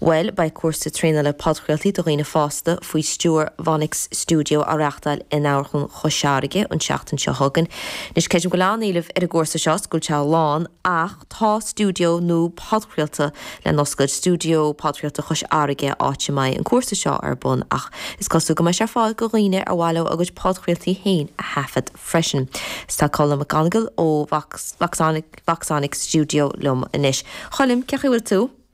Bhuel, beidh cúrsa traenála le podchraoltaí do dhaoine fásta faoi stiúir Voxonic Studio á reáchtáil in Amharclann Chois Fharraige an tseachtain seo chugainn. Anois, creidim go bhfuil an-éileamh ar an gcúrsa seo, scoilte lán, ach tá stiúideo nua podchraolta lena oscailt, Stiúideo Podchraolta Chois Fharraige, áit a mbeidh an cúrsa seo ar bun, ach is cosúil go mbeidh sé ar fáil do dhaoine ar mhaith leo a gcuid podchraoltaí féin a thaifead freisin. Is tá Colm McGonigle ó Voxonic Studio liom anois. Choilm, cén chaoi a bhfuil tú?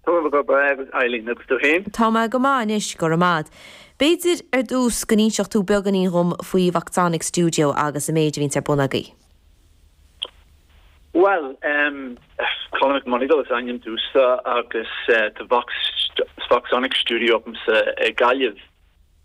Tá mé go breá anois Eileen, agus tú féin? Tá mé go maith anois, go raibh maith 'ad. B'fhéidir, ar dtús, go n-inseodh tú beagáinín dhom faoi Voxonic Studio agus an méid a bhíonns ar bun agaibh. Bhuel, em, Colm Mac Monagail is ainm domhsa agus, eh, tá Vox, Voxonic Studio agamsa i gGaillimh.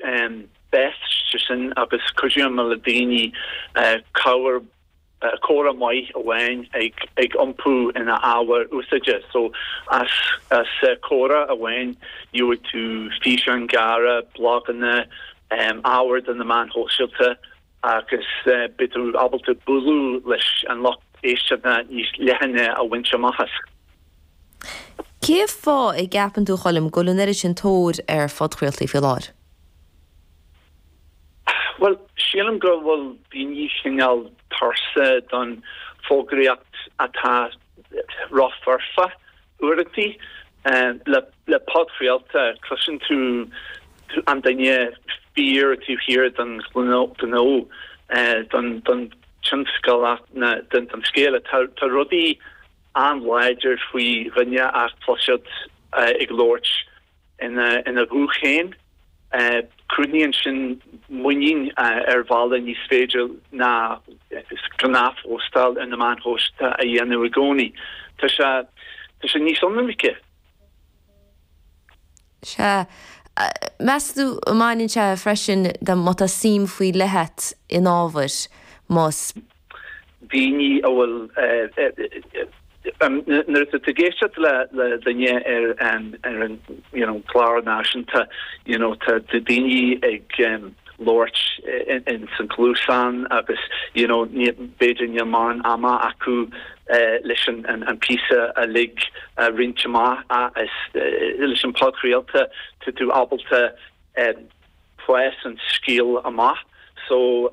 Bhuel, sé sin, agus cuideoidh mé le daoine cabhair, comhrá maith amháin a iompú ina ábhar úsáideach. So as comhrá amháin gheobhaidh tú físeáin ghearra, bloganna, ábhar do na meáin shóisialta, agus beidh tú ábalta bualadh leis an lucht éisteachta níos leithne a bhaint amach as. Cé fáth a gceapann tú, a Choilm, go bhfuil an oiread sin tóir ar phodchraoltaí faoi láthair? Bhuel, sílim go bhfuil daoine cineál tuirseach den fhógraíocht atá rófhoirfe. Uaireantaí le podchraolta cloiseann tú an duine fíor taobh thiar den ghnó, den tionscal agus den scéal. Tá rud éigin an-láidir faoi dhuine a chloisteáil ag labhairt ina ghuth féin. Cruthaíonn sin muinín ar bhealach nach féidir le gnáthphóstáil ar na meáin shóisialta a dhéanamh i gcónaí. Tá sé níos ionraice. Sea. Meas tú an mbaineann sé freisin de má tá suim faoi leith 'ad in ábhar, más. daoine a bhfuil, nuair atá tú ag éisteacht le duine ar an you know clár náisiúnta you know tá daoine ag labhairt ins an cluasán agus you know b'fhéidir níl mórán ama acu leis an píosa uilig a roinnt amach ach leis an podchraolta tá tú ábalta Spás an scéal amach so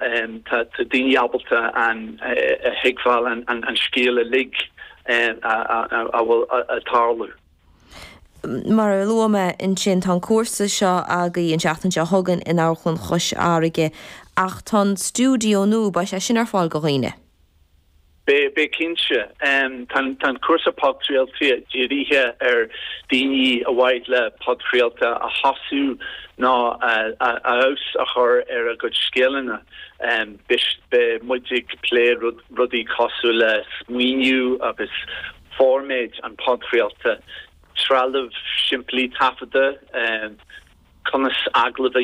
tá daoine ábalta ann a thuigbheáil an scéal uilig a bhfuil ag tarlú. Mar a luaigh mé ansin tá an cúrsa seo agaibh an tseachtain seo chugainn in Amharclann Chois Fharraige ach tá an stiúideo nua beidh sé sin ar fáil go dhaoine. Beidh cinnte. Tá an cúrsa podchraolta dírithe ar dhaoine ar mhaith leo podchraoladh a thosú nó feabhas a chur ar a gcuid scileanna. Beidh muid ag plé rudaí cosúil le smaoineamh agus formáid an podchraolta, trealamh simplí taifeadta, conas agallamh a